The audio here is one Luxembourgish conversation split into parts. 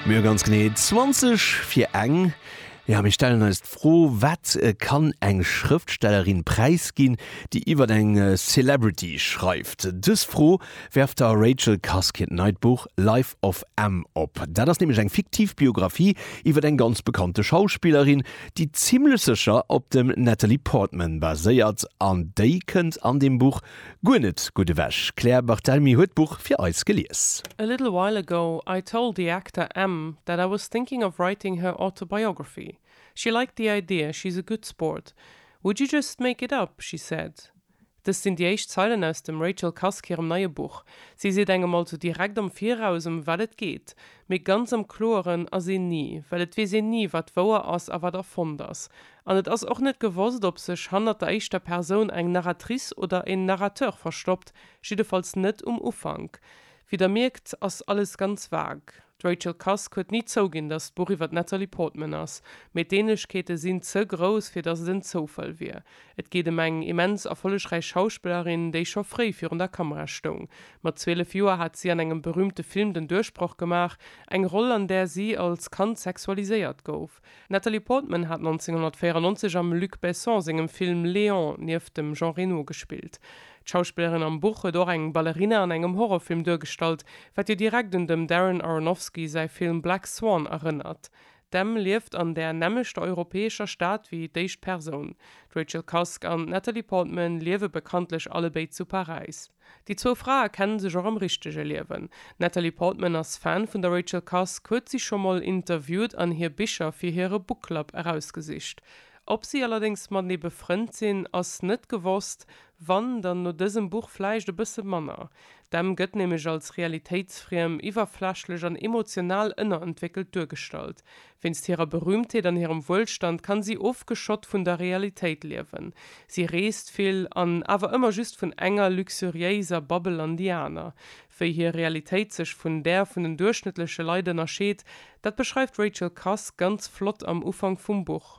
Mir hu ganz genee 20 fir eng. Jo, mir stellen eis d'Fro, Wat kann eng Schrëftstellerin präisginn, déi iwwer eng Celebrity schreift? Dës Fro werft der Rachel Cusk hiert neit Buch Life of M op. Dat ass nämlech eng fiktiv Biographie iwwer eng ganz bekannte Schauspillerin, déi zimmlech sécher op dem Natalie Portman baséiert. An déi kënnt an deem Buch Guer net gutt ewech. D'Claire Barthelmy huet d'Buch fir eis gelies. A little while ago I told the actor M that I was thinking of writing her autobiography. She liked the idea, she's a good sport. Would you just make it up? she said. Dëst sinn déi éischt Zeilen aus dem Rachel Cusk hirem neie Buch. Si seet engem also direkt am Viraus, ëm wat et geet. Mee ganz am Kloeren ass een ni, well et weess een ni, wat wouer ass a wat erfonnt ass. An et ass och net gewosst, ob sech hannert der éischter Persoun eng Narratrice oder en Narrateur verstoppt, jiddefalls net um Ufank. Wéi der mierkt, ass alles ganz vague. D'Rachel Cusk huet ni zouginn, datt d'Buch iwwer d'Natalie Portman ass, mee d'Ähnlechkeete sinn ze grouss, fir datt et en Zoufall wier. Et geet ëm eng immens erfollegräich Schauspillerin, déi scho fréi virun der Kamera stoung. Mat 12 Joer hat si an engem berüümte Film den Duerchbroch gemaach, eng Roll an där si als Kand sexualiséiert gouf. D'Natalie Portman hat 1994 am Luc Besson sengem Film Léon nieft dem Jean Reno gespillt. D'Schauspillerin am Buch huet och eng Ballerina an engem Horrorfilm duergestallt, wat jo direkt un dem Darren Aronofsky säi Film Black Swan erënnert. D'Em lieft an där nämmlechter europäescher Stad wéi d'éischt Persoun. D'Rachel Cusk an d'Natalie Portman liewe bekanntlech allebéid zu Paräis. Déi zwou Frae kenne sech och am richtege Liewen. D'Natalie Portman ass Fan vun der Rachel Cusk, huet si scho mol interviewt an hir Bicher fir hire Bookclub erausgesicht. Ob si allerdéngs matenee befrënnt sinn, ass net gewosst. Wann, dann no dësem Buch vläicht e bësse manner. D'Emm gëtt nämlech als realitéitsfriem, iwwerflächlech an emotional ënnerentwéckelt duergestallt. Wéinst hirer Berühmtheet an hirem Wuelstand kann si ofgeschott vun der Realitéit liewen. Si reest vill an awer ëmmer just vun enger luxuriéiser Babbel an déi aner. Wéi hir Realitéit sech vun där vun den duerchschnëttleche Leit ënnerscheet, dat beschreift d'Rachel Cusk ganz flott am Ufank vum Buch.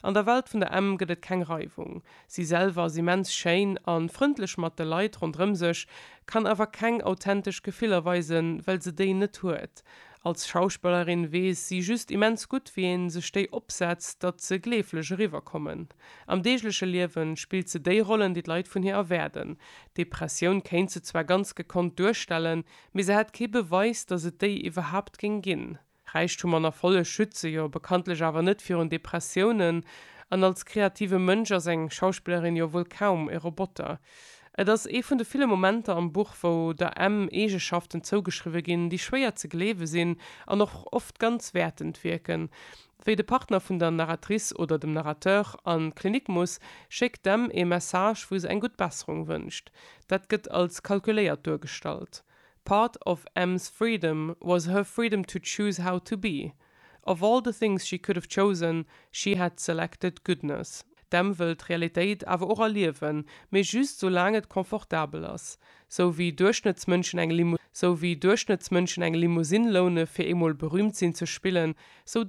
An der Welt vun der Emm gëtt et keng Reiwung. Si selwer ass immens schéin a frëndlech mat de Leit ronderëm sech, kann awer keng authentesch Gefiller weisen, well se déi net huet. Als Schauspellerin weess si just immens gutt, wéi ee sech déi opsetzt, datt se gleeflech eriwwerkommen. Am deegleche Liewe spillt se déi Rollen, déi d'Leit vun hir erwaarden. D'Depressioun kéint se zwar ganz gekonnt duerstellen, mee se hätt kee Beweis, datt et déi iwwerhaapt géing ginn. Räichtum an Erfolleg schütze jo bekanntlech awer net virun Depressiounen, an als kreative Mënsch ass eng Schauspillerin jo wuel kaum e Roboter. Et ass ee vun de ville Momenter am Buch, wou der Em Eegeschaften zougeschriwwe ginn, déi schwéier ze gleewe sinn an och oft ganz wäertend wierken. Wéi de Partner vun der Narratrice oder dem Narrateur an d'Klinik muss, schéckt d'Em ee Message, wou se eng gutt Besserung wënscht. Dat gëtt als kalkuléiert duergestallt. Part of Em's freedom was her freedom to choose how to be. Of all the things she could have chosen, she had selected goodness. D'Em wëll d'Realitéit awer och erliewen, mee just sou laang et confortabel ass. Sou wéi Duerchschnëttsmënschen eng Limousine loune fir eemol berüümt sinn ze spillen, sou